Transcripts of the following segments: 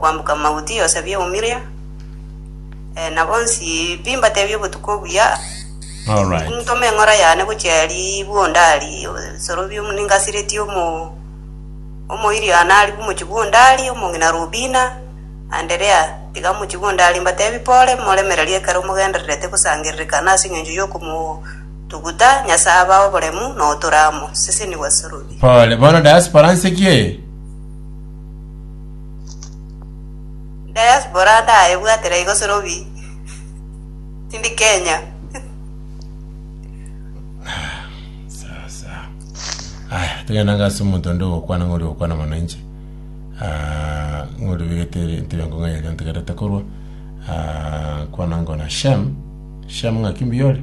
Kwamboka mauti yosabie eumiria, eh, na bonsi pi mbatebie obotuko obuya, All right. ntome eng'ora yane gochia ari bwondari, sorobie omu- ningasiretie omo omoiri yane ari bwomochi bwondari, omong'ina Rubina, Anderea, tiga mochi bwondari mbatebie pore, moremererie ekero mogendererete gosangererekana ase engencho y'okomotuguta Nyasae abae oboremu, na otore amo. Sesenigwa sorobie. Pole. Bono diaspora nse ki eye? Diaspora ndaebwatera igo sorobi tindi Kenya. Sawa sawa. Aya, tugenda ngase omonto onde ogokwana ng'ori ogokwana mono inche. Ah, ng'ori obegete entebe engo ng'a eria ntegerete korwa. Ah, kwana ngona Shem. Shem ng'aki mbuyore?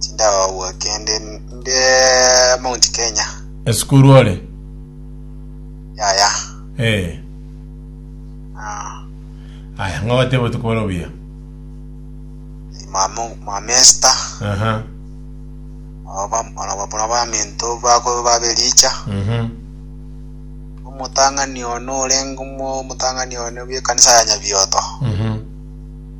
Tindagwa kende nde Mount Kenya. Esukuru ore? Yaya. Eh. Ah, Aya, ng'ogote botuko bore obuya. mama mama Esther. Aha. Aba aba bora ba mento bako babelicha. Mhm. Omotang'ani ono orengo mo motang'ani ono bie kanisa ya Nyabioto. Mhm.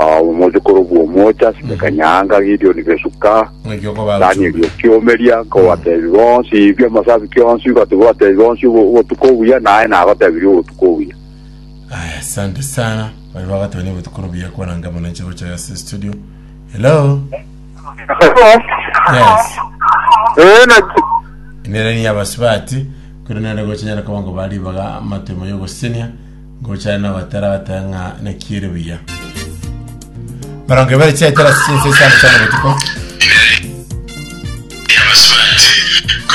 Ah, omochokoro bw'omoocha asime kanyanga Gideoni besuka Danieli okiomeria nkobatebi bonsi ibio amasabi kionsi igoti botebi bonsi obo- obotuko obuya naye nagotebirie obotuko obuya Aya, asante sana. Bari bagateba ni botukuru buya kwananga mono nche gocha yase studio. Hello. Yes. Eh, na Nere ni abasibati. Kuri nere gocha nyara kobango bari baga matemo yogosenia. Ngocha nabatera bateba ng'a naki ere buya. Mirongo ebere chiaetera ase chinsa isano chi'amabotuko.